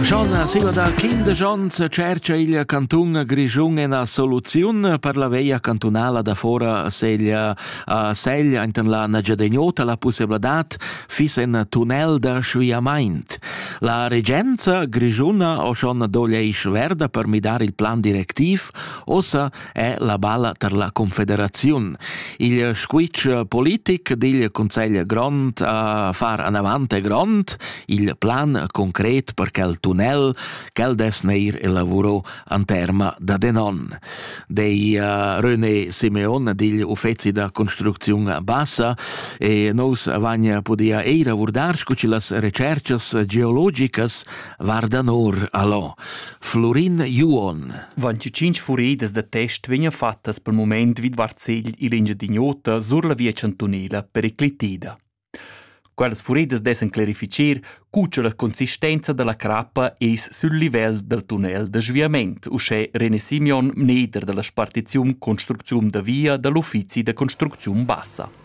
Schonna siva da quindesch ons tschercha il cantun Grischun ena soluziun per la veia cantunala da fora seglia a Segl ainten la Nagyadegnota la pussebladat fis en tunnel da sviamaint. La regenza grischuna o schon doglia isch verda per midar il plan directiv ossa è la balla tar la Confederaziun. Il squitsch politic digl Consegl grond a far anavant è grond, il plan concret per quel tunnel, quel des neir elavuro an terma da denon. Dei uh, René Simeon digl uffeci da construcziun bassa e nous vagna podia eira vurdar scu ci las recercas geologicas varda nor allo. Florin Juon. Vanci cinc furidas da test vegnan fattas pel mument vidvart segl il Engiadin'Ota sur la via chantunela periclitida. Quellas furidas dessan clarificer cu cha la consistenza da la crappa es sül livel dal tunnel da sviament, uschè René Simeon, mneder da la spartiziun construcziun da via da l'uffizi da construcziun bassa.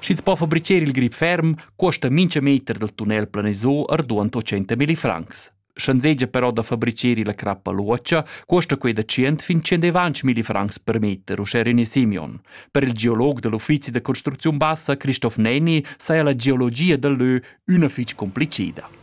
Sch'ins po fabricher il grip ferm, cuosta mincha meter dal tunnel planisò arduant 80 milli francs. Sch'anzegia però da fabricher la crappa luocha, cuosta quei da 100 fin 120 milli francs per meter, uschè René Simeon. Per il geolog da l'uffizi da construcziun bassa Christoph Neni saja la geologia dal lö üna fich complicida.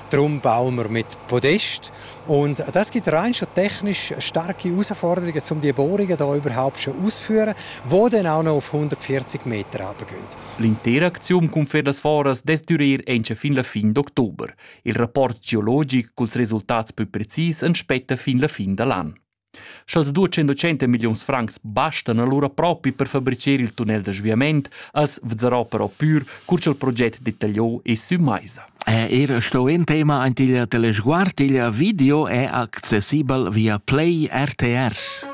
Drum bauen wir mit Podest. Und das gibt rein schon technisch starke Herausforderungen, um die Bohrungen da überhaupt schon auszuführen, wo dann auch noch auf 140 Meter runtergehen. L'interakzione con Fedas Foras dess durer entsch fin la fin d'october. Il rapport geologic culs resultats pü precis en spetta fin la fin da l'an. Sch'als 200 milliuns francs bastan alura propi per fabricer il tunnel da sviament, as vezzarò però pür cur cha'l proget detagliò es sü maisa. Er sto in tema aint il Telesguard il video è accessibel via Play RTR.